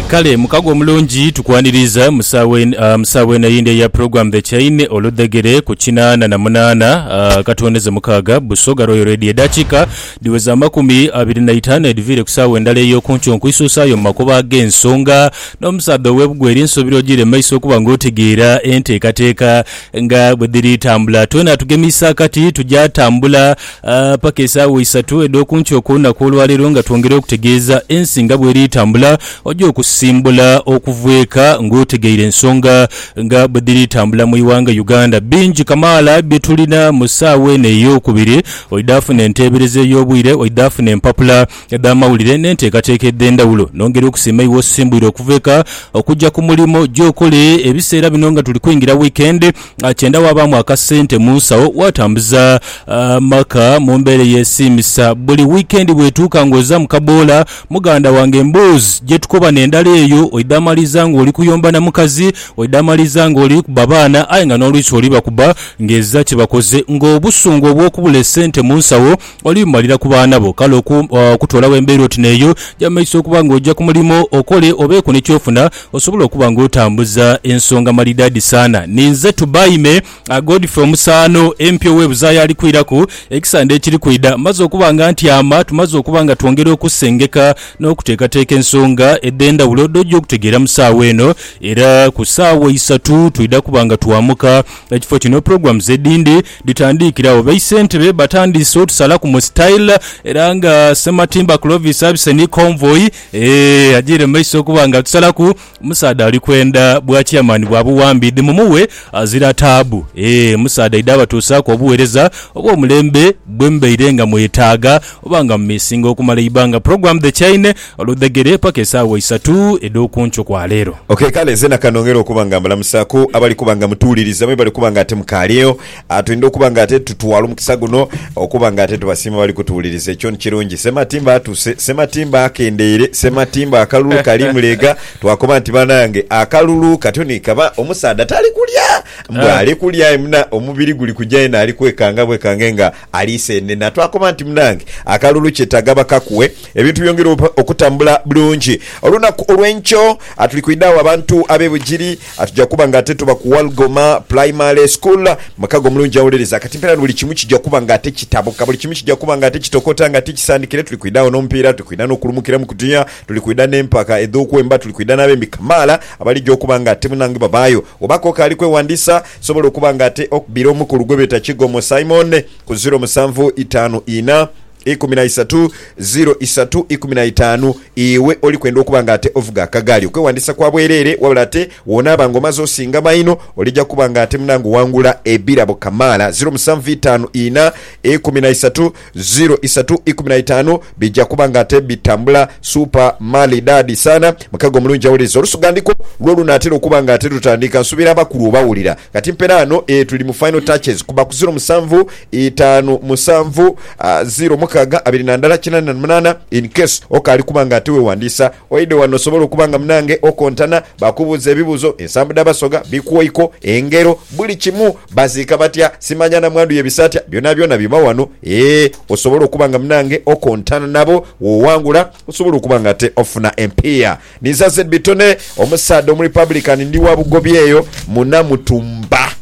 Kale mukago omulungi tukwaniriiza mu saawa en- ah, mu saawa eno eyindi eya program The Chaine oludhegere ku kinaana na munaana ah, katuwoneze mukaaga Busoga Royal Radio edakika dhiweza amakumi abiri na itaanu edhiviire ku saawa endala eyokunkyo nkwisusaayo mu makubo agensonga nomusaadha owebugwere nsuubira ojiire mumaiso okuba nga otegeera enteekateeka nga bwedhiri tambula twena tugemiise akati tuja tambula Aah paka esaawa isatu edh'oku nkyo okw'olunaku olwaleero nga twongera okutegeeza ensi nga bweri etambula, oja okusimbula okuva eka nga otegeire ensonga nga bwe dhiri tambula mu ighanga Uganda. Bingi kamaala bye tulina mu saawa eno ey'okubiri, oidha funa enteebereza ey'obwire, oidha funa empapula edh'amawulire n'enteekateeka edh'endhawulo. Nongera okusiima iwe osimbwire okuva eka okuja ku mulimo, oja okole ebiseera bino nga tuli kwingira wiikendi. kyenda waabaamu akasente mu nsawo waatambuza amaka mu mbeera eyeesiimisa. Buli wiikendi bw'etuuka ng'oza mu kaboola, muganda wange emboozi gye tukoba n'endala eyo oidhaamaliza ng'oli kuyomba na mukazi, oidhaamaliza ng'oli kuba baana aye nga n'oluusi oli bakuba ng'ezira kye bakoze. Ng'obusungu obw'okubula esente mu nsawo Olimalira ku baana bo, kale okutoolawo embeera oti n'eyo gya mu maiso okuba ng'oja ku mulimo okole obeeko ni ky'ofuna osobole okuba ng'otambuza ensonga malidaadi saana. Ninze Tubaime Godfrey Omusaano empya ow'e Buzaaya alikwiraku ekisande ekiri kwidha. Mmaze okuba nga ntyama, tumaze okuba nga twongera okusengeka n'okuteekateeka ensonga edh'endhawulo dh'oja okutegeera mu saawa eno era ku saawa isatu twidha kuba nga twamuka ekifo kino. Programs edhindi. Dhitandiikiragho. Baisentebe batandiise otusalaku mu style era nga Ssematimba Clovis abise ni Convoy eeh ajiire mu maiso okuba nga atusalaku. Omusaadha ali kwenda bwa Chairman bwa buwambi dhi mumuwe azira taabu eeh omusaadha aidha abatuusaaku obuwereza obw'omulembe bwe mubaire nga mwetaaga oba nga mumisinga okumala eibbanga Program The Chaine. Oludhegere paka esaawa isatu edh'oku nkyo kwa leero. Ok kale nze na kanongera okuba nga mbalamusa ku abali kuba nga mutuwuliriza mwe bali kuba nga ate mukaaliyo. Twendha okuba nga ate tutwala omukisa guno okuba nga ate tubasiima abali kutuwuliriza. Ekyo ni kirungi. Ssematimba atuse. Ssematimba akendeire. Ssematimba akalulu kali mulega. Twakoba nti banange akalulu katyo ni kaba. Omusaadha tali kulya. Mbu ali kulya aye muna omubiri guli kuja yena ali kwekanga bwekange nga. Ali seenena. Twakoba nti munange akalulu kyetaaga bakakuwe ebintu byongere okutambula bulungi. Olunaku olw'enkyo tuli kwidha agho abantu ab'e Bugiri tugya kuba ng'ate tuba ku Walgoma Primary School. Mukago mulungi awuliriza kati mpeera ni buli kimu kija kuba ng'ate kitabuka. Buli kimu kija kuba ng'ate kitokota ng'ate kisandikire. Tuli kwidha agho n'omupiira, tuli kwidha n'okulumukira mu kutuya, tuli kwidha n'empaka edh'okwemba, tuli kwidha n'abembi kamaala abaligya okuba ng'ate munange babaayo. Wooba k'okaali kweghandiisa, Kisobola okuba nga ate okbire omukulu gwe beeta Kigomo Simon ku ziro musanvu itaanu ina, ikumi na isatu, ziro isatu ikumi na itaanu. Iwe oli kwenda okuba nga ate ovuga akagaali? Okwewandiisa kwa bwereere, wabula ate woonaaba nga omaze osinga maino, olija kuba nga ate munange owangula ebirabo kamaala. Ziro musanvu itaanu ina, ikumi na isatu, Ziro isatu ikumi na itaanu bija kuba nga ate bitambula supa mali daadi saana. Mukago omulungi awuliriza olusugandiko lwo olunaatera okuba nga ate lutandika. Nsuubira abakulu obawulira kati mpera ano. Ee, tuli mu final touches kuba ku ziro musanvu itaanu musanvu, ziro mukaaga abiri na ndala kinaana na munaana. In case okaali kuba nga ate weewandiisa. Oidhe wano osobole okuba nga munange okontana, bakubuuze ebibuzo, ensambu dha Basoga, bikwoiko, engero, buli kimu, baziika batya, simanya namwandu yebisa atya, byonabyona biba wano ee osobole okuba nga munange okontana nabo, wowangula osobole okuba nga ate ofuna empiiya. Ninza ZB Tony omusaadha omurepublican ndi wa Bugobi eyo mu Namutumba.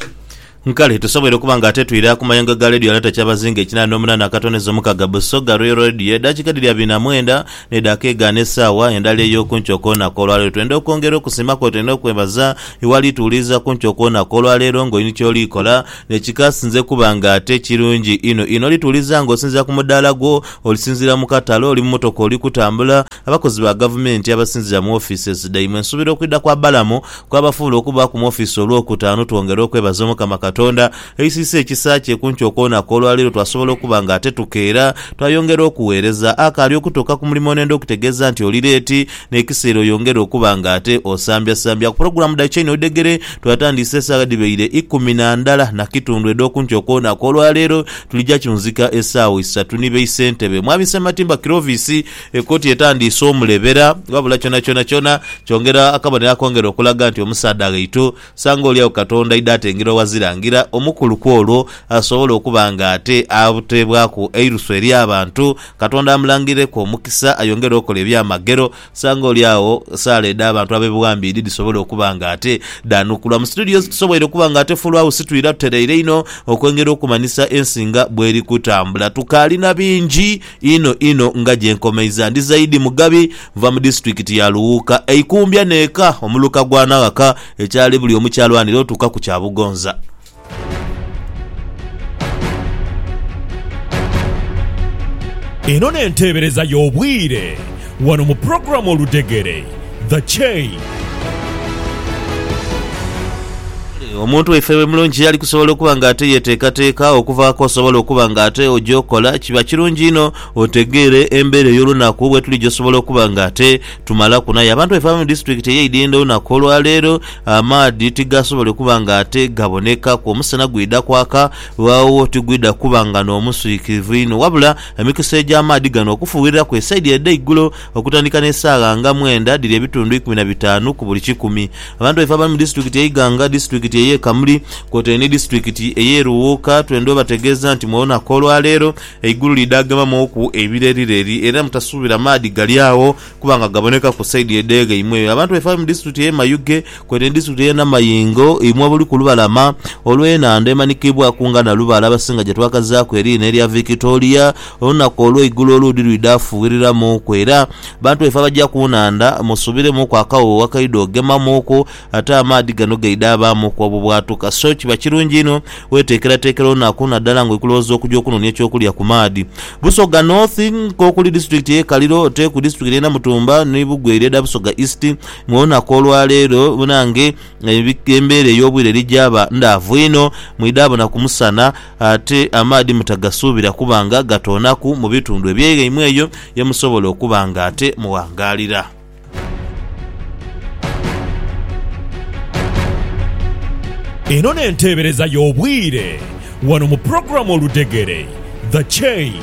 Nkale tusoboire okuba nga ate twira ku mayengo ga leediyo alata kyabazinga ekinaana n'omunaana akatoneza omukaga Busoga Royal Radio edakika edhiri abiri na mwenda n'edhaka egaana esaawa endala ey'okunkyo okw'olunaku olwaleero. Twenda okwongera okusiima kwetwena okwebaza iwali tuwuliriza kunkyo okw'olunaku olwaleero ng'oyini kyoli kola nekikasinze kuba nga ate kirungi inho inho oli tuwuliriza ng'osinziira ku mudaala gwo, olisinziira mu katale, oli mu motoka oli kutambula, Abakozi ba gavumenti abasinzira mu offices dhaimwe nsuubira okwidha kwa Balamu kwabafuula okubaaku mu office olwokutaanu twongere okwebaza omukama katonda aisiisa ekisa kye kunki okwonaku olwaleero twasobola okuba nga ate tukeera twayongera okuweereza akaali okutuuka ku mulimo nenda okutegeeza nti oli leeti nekiseera oyongere okuba nga ate osambyasambya ku program dha chain odegere twatandiise esaawa dhibaire ikumi nandala nakitundu edhokunki okwonaku olwaleero tulija kyunzika esaawa isatu ni baisentebe mwami Ssematimba Kirovisi Ekooti etandiise omulebera ghabula kyonakyona kyona kyongera akabonero akongera okulaga nti omusaadha ghaitu sanga oli agho Katonda aidha atengera oghazira ngira omukulu kw'olwo asobole okuba nga ate ateebwaku eirusu eri abantu. Katonda amulangireku omukisa ayongere okola ebyamagero sanga oli agho saala edh'abantu ab'ebuwambe idi dhisobole okuba nga ate dhaanukulwa mu situdiyo ezitusoboire okuba nga ate Full House twira tutereire inho okwengera okumanhisa ensi nga bweri kutambula. Tukaali na bingi. Inho inho nga gye nkomeiza. Ndi Zaidi Mugabi, nva mu disiturikiti ya Luwuuka, eikumbya n'eka omuluka gwa Naghaka, ekyali buli omu ky'alwanira otuuka ku kya Bugonza. Eno n'enteebereza y'obwire wano mu pulogulaamu Oludhegere. The Chain. Kale, omuntu waife we mulungi ali kusobola okuba nga ate yeteekateeka okuva k'osobola okuba nga ate oja okola, kiba kirungi inho otegeere embeera ey'olunaku bwe tulija osobola okuba nga ate tumalaku. N'aye abantu baife abali mu disitulikiti ey'e Idinda olunaku olwa leero amaadhi tigasobole kuba nga ate gabonekaku. Omusana gwidha kwaka agho tigwidha kuba nga n'omuswikirivu inho wabula emikisa egy'amaadhi gano okufuuwiriraku esaidi edh'eigulo, Okutandika n'esaagha nga mwenda dhiri ebitundu ikumi na bitaanu ku buli kikumi. Abantu baife abali mu disitulikiti e Iganga, disitulikiti ey'e Kamuli kwotaire ni disitulikiti ey'e Luwuuka twendha obategeeza nti mu lunaku olwaleero eigulu liidhaagemamauku ebirerireri era mutasuubira maadhi gali agho kuba nga gabonekaku saidi edh'eghaimwe. Abantu baife abali mu disitulikiti ey'e Mayuge, Kwene ndisitula enhama y'ingo imwe abali ku lubalama olw'enhandha emanikiibwaku nga Nalubaale abasinga gye twakazaaku eriina erya Victoria. Olunaku olw'eigulo oluudi lwidha fuughiriramuuku era bantu baife abaja ku nhandha musubiremuuku akawoowo akaidha ogemamuuku ate amaadhi gano gaidha abaamuuku obubwatuka so kiba kirungi inho weteekerateekera olunaku nadala nga oli kulowooza okuja okunoonia eky'okulya ku maadhi. Busoga North, Nk'okuli disitulikiti y'e Kaliro, Teku, disitulikiti y'e Namutumba ni Bugweri edha Busoga East, Mu lunaku olwa leero nange embeera ey'obwire eri gyaba ndaavu inho. Mwidha bona ku musana, ate amaadhi mutagasuubira kuba nga gatoonaku mu bitundu ebye ghaimwe eyo ye musobola okuba nga ate mughangaalira. Eno n'enteebereza y'obwire wano mu pulogulaamu Oludhegere, The Chain.